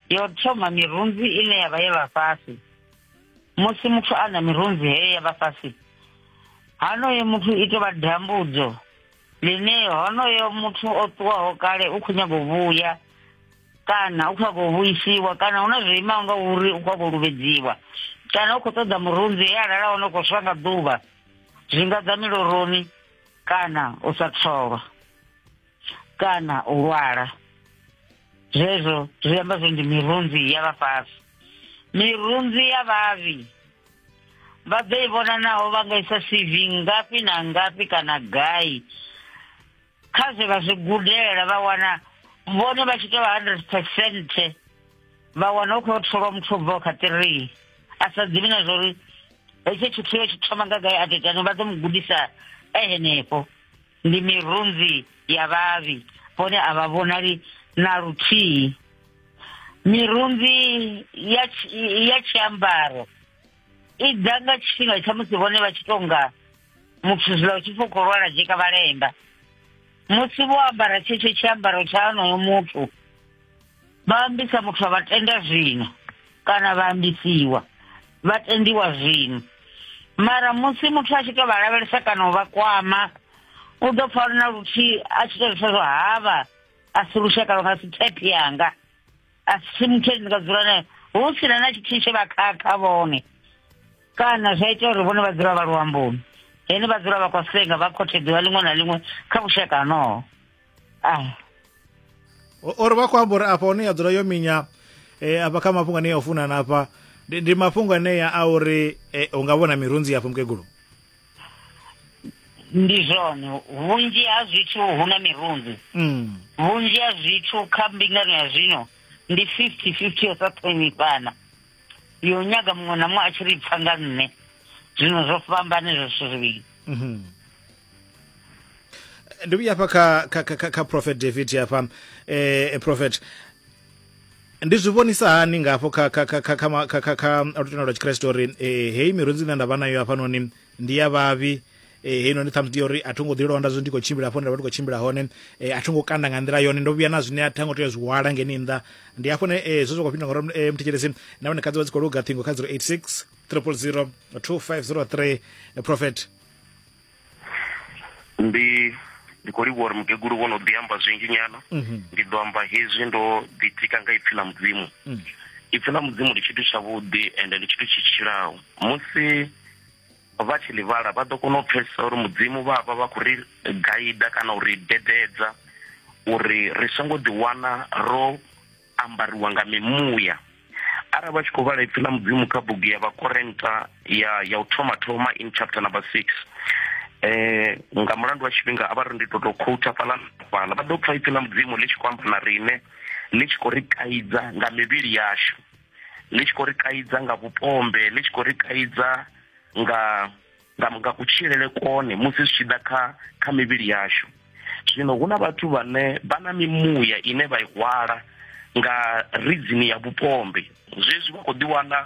yo thoma mirunzi ine ya vha ye vha fhasi musi muthu a na mirunzi heyo ya vha fhasi hanoyo muthu i tovha dambudzo ḽine honoyo muthu o ṱuwaho kale u khou nyago vhuya kana u khou khou vhuisiwa kana hu na zwo imaho nga uri u khou khou luvhedziwa kana u khou ṱoḓa murunzi e alala hone u khou swa nga ḓuvha zwi nga ḓa miloroni kana u sa tholwa kana u lwala zwezwo zwi amba zwo ndi mirunzi ya vhafhasi mirunzi ya vhavhi vha ḓo i vhona naho vha nga isa cv ngafhi na ngafhi kana gai kha zwe vha zwi gudela vha wana vhone vha tshi tou hundred percent vha wana u khou tholwa muthu bvaho kha three a sa ḓivhi na zwa uri hetsho tshithu yo tshi thoma nga gai a titani vha ḓo mu gudisa e henefho ndi mirunzi ya vhavhi vhone a vha vhonali na luthihi mirunzi ya ya tshiambaro i ḓa nga tshifhinga tsha musi vhone vha tshi tonga muthu zwiḽa u tshi pfa khou lwala dzheka vhalemba musi vho ambara tshetsho tshiambaro tsha honoyo muthu vha ambisa muthu a vha tenda zwino kana vha ambisiwa vha tendiwa zwino mara musi muthu a tshi to vha lavhelesa kana u vha kwama u ḓo pfa na luthihi a tshi to lisa zwa havha a si lushaka lwa nga si thepi yanga a si muthu ndi nga dzula naye hu sina na tshithihi tshe vha khakha vhone kana zwa ita uri vhone vha dzula vha luamboni hene vha dzula vha khou senga vha khou theḓiwa ḽiṅwe na ḽiṅwe kha vhushaka honoho ah. uri vha khou amba uri afha hone ya dzula yo minya eh, afha kha mafhungo ane ya u funana afha ndi, ndi mafhungo anea a uri eh, u nga vhona mirunzi yafho mukegulu ndi zwone vhunzhi ha zwithu hu na mirunzi mm. vhunzhi ha zwithu kha mbingano ya zwino ndi fifty fifty yo sa ṱhonifhana yo nyaga muṅwe na muṅwe a tshi ri pfa nga nṋe zwino zwo fhambane zwo zwithu zwivhili mm -hmm. ndi vhuya hafha kha, kha, kha, kha, kha prophet david hafha eh, prophet ndi zwi vhonisa hani nga hafho kha kha kha kha kha ma- kha kha kha lutendo lwa tshikriste uri eh, heyi mirunzi ine nda vha nayo hafhanoni ndi ya vhavhi eh, heyi noni ṱhamusi ndi ya uri a tho ngo ḓi londa zwo ndi khou tshimbila hafho nda vha ndi khou tshimbila hone eh, a tho ngo kanda nga nḓila yone ndo vhuya na zwine a tha ngo tea zwi hwala ngeni nnḓa ndi hafho ne eh, zwo zwi khou fhindula ngauri eh, mthetshelesi na vhone khadzi vha dzi khou luga ṱhingo kha 086 000 2503 eh, prophet ndi ndi khou livhuwa uri mukegulu vho no ḓi amba zwinzhi nyana mhm. ndi ḓo amba hezwi ndo ḓitika nga ipfi ḽa mudzimu mm. ipfi ḽa mudzimu ndi tshithu tshavhuḓi ende ndi tshithu tshi tshilaho musi vha tshi ḽi vhala vha ḓo kona u pfesesa uri mudzimu vha vha vha khou ri gaida kana u ri dededza uri ri songo ḓiwana ro ambariwa nga mimuya arali vha tshi khou vhala ipfi ḽa mudzimu kha bugu ya vhakorenta ya ya u thoma thoma in chapter number six eh nga mulandu wa tshifhinga a vha ri ndi to to khouta fhaḽa fhaḽa vha ḓo pfa ipfi ḽa mudzimu ḽi tshi khou amba na riṋe ḽi tshi khou ri kaidza nga mivhili yashu ḽi tshi khou ri kaidza nga vhupombe ḽi tshi khou ri kaidza nga nga, nga kutshilele kone musi zwi tshi ḓa kha, kha mivhili yashu. Zwino hu na vhathu vhane vha na mimuya ine vha i hwala nga ridzini ya vhupombe zwezwi vha khou ḓiwana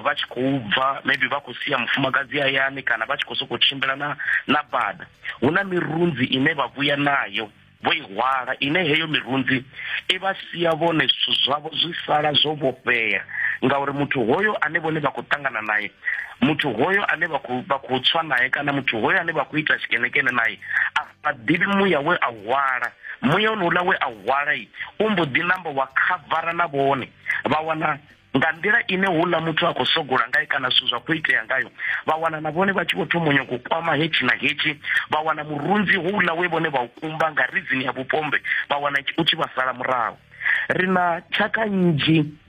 vha tshi khou bva maybe vha khou sia mufumakadzi hayani kana vha tshi khou sokou tshimbila na na bada hu na mirunzi ine vha vhuya nayo vho i hwala, ine heyo mirunzi i vha sia vhone zwithu zwavho zwi sala zwo vhofhea, ngauri muthu hoyo ane vhone vha khou ṱangana nae, muthu hoyo ane vha khou vha khou tswa nae kana muthu hoyo ane vha khou ita tshikenekene nae a vha ḓivhi muya we a hwala muya onouḽa we a hwala u mbo ḓi namba wa khavara na vhone vha wana nga nḓila ine houḽa muthu a khou sogola ngayo kana zwithu zwa khou itea ngayo vha wana na vhone vha tshi vho thoma nyoko kwama hetshi na hetshi vha wana murunzi houḽa we vhone vha u kumba nga ridzini ya vhupombe vha wana u tshi vha sala murahu ri na tshaka nnzhi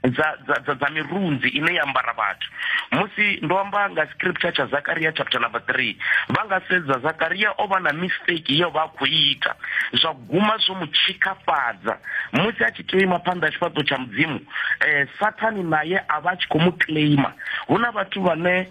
dza dza dza dza mirunzi ine ya ambara vhathu musi ndo amba nga scripture tsha zakaria chapter number 3 vha nga sedza zakaria o vha na mistake yo vha a khou ita zwa guma zwo mu tshikafhadza musi a tea u ima phanḓa ha tshifhaṱo tsha mudzimu um sathani naye a vha a tshi khou mu claima hu na vhathu vhane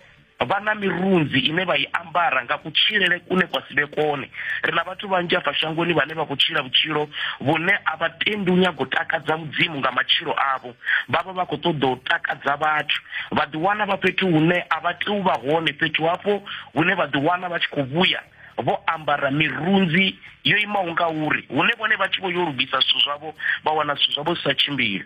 vha na mirunzi ine vha i ambara nga kutshilele kune kwa si vhe kone ri na vhathu vhanzhi afha shangoni vhane vha khou tshila vhutshilo vhune a vha tendi u nyaga u takadza mudzimu nga matshilo avho vha vha vha khou ṱoḓa u takadza vhathu vha ḓiwana vha fhethu hune a vha tea u vha hone fhethu hafho hune vha ḓiwana vha tshi khou vhuya vho ambara mirunzi yo imaho nga uri hune vhone vha tshi vho yo lugisa zwithu zwavho vha wana zwithu zwavho zwi sa tshimbili